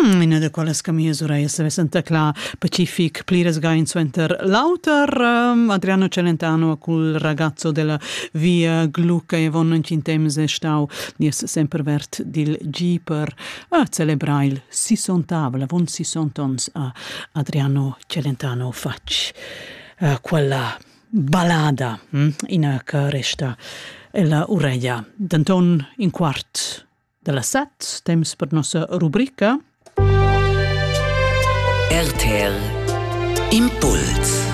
Mm, ina da quellas che mia surei se vesenta cla pacific pliras gain suenter l'auter um, Adriano Celentano cul ragazzo della via Glu che von in temps è stau nies sempre vert dil Jeeper a celebrar il 60 la von 60 ans a Adriano Celentano facc uh, quella ballada hm? ina che resta ella ureia d'Anton in quart da la set temps per nossa rubrica RTL Impuls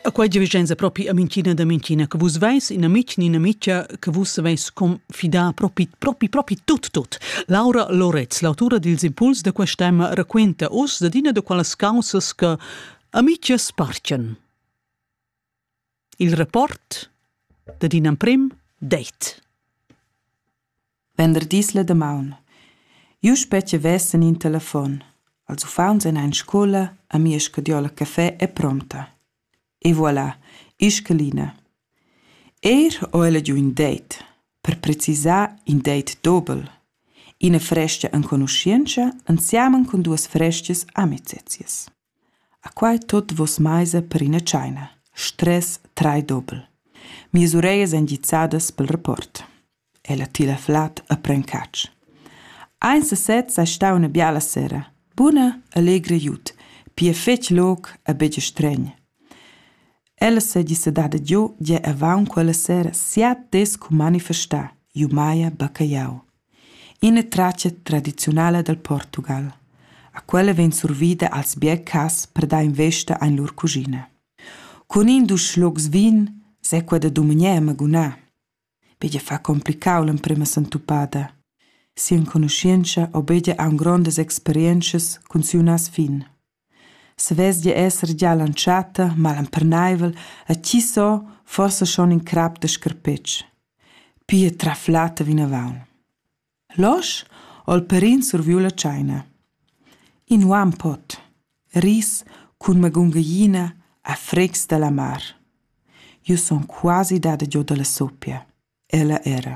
A quai divigenza propi a mincina da mincina che vus veis ina mic ni ina mica che vus veis confidà propi, propi, propi tut, tut. Laura Loretz, l'autura dils impuls da questa tema, raquenta us d'ina da quelles causas che amiches parcen. Il rapport dad in emprim det. Venderdis la damaun. Jeu spetge vessen in telefon. Els uffants en ein scola, a mia scadiola caffè è pronta. E voilà, Ischeline. Er ho ella giu in date, per precisar in date dobel. Ina fresca enconuschientscha insiamen con duas frescas amicizias. A quai tuot voss maisa per üna tschaina. Stress trai dobel. Mias urejas èn gizzadas pel rapport. Ella tila flad e pren catsch. Aint sesez sai stà üna biala sera. Buna e legra jut, pia fetg loc e be stregn. Ella s'è dissedada giu gia avant quella sera siat des cu manifestà, iu maia bacca jau. ina tratga tradiziunala dal Portugal. A quella vegn survida als biercas per dar investa en lur cuschina. Cun in dus schlucs vin se quella dumengia magunà. Begia fa complicau l'emprema santupada. Sia enconuscienza obedia a grondas experienzas cun siu nas fin. Savesdia esser gia l'entschatta malemperneivel e tgi so, forsa schon in crap da scarpetg. Pia traflata vinavon. Losch ho il pèrin surviu la tscheina. In uan pot, ris cun magungaglina a fregs dalla mar. Jeu sun quasi dada giu dalla soppia. Ella era.